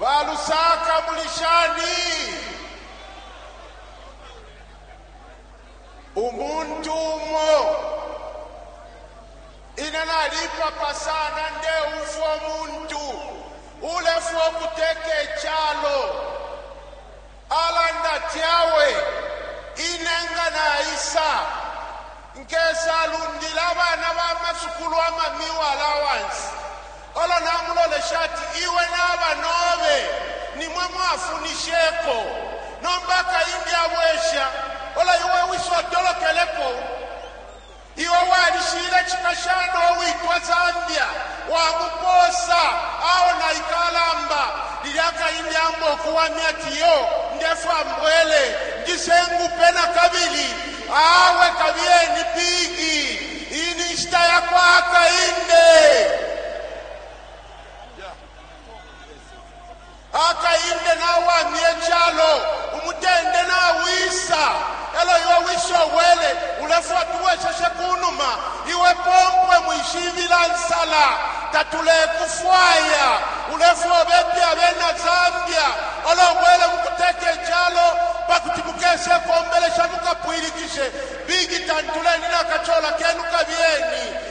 Ba Lusaka muli shani? Umuntu umo ine nalipapa sana ndeumfwa umuntu ulefwa ukuteka icalo Alanda ati, Awe ine nga naisa, nkesalundila abana ba masukulu ama meal allowance. Olo namulolesha ati, Iwe nabanobe nimwe mwafunisheko. Nomba akaingi abwesha, olo iwe wise otolokeleko. Iwe walishiile cipashana uwitwa Zambia, wamupoosa aona ikalamba lilya kaindi amba ukuwamya ati, Iyo, ndefwaya mbwele, njise ngupe na kabili. Awe kabiyeni pig! Iyi ni nshita ya kwa Hakainde. Bakainde nawamye calo, umutende nawisa, elo iwe we Sowele, ulefwa tubweseshe kunuma, iwe pompwe mwishibila nsala, tatulekufwaya, ulefwa ubepe abena Zambia, olo ubwele mukuteka icalo pakuti mukesekombelesha mukapwilikishe big tantuleni nakacola kenu kabiyeni.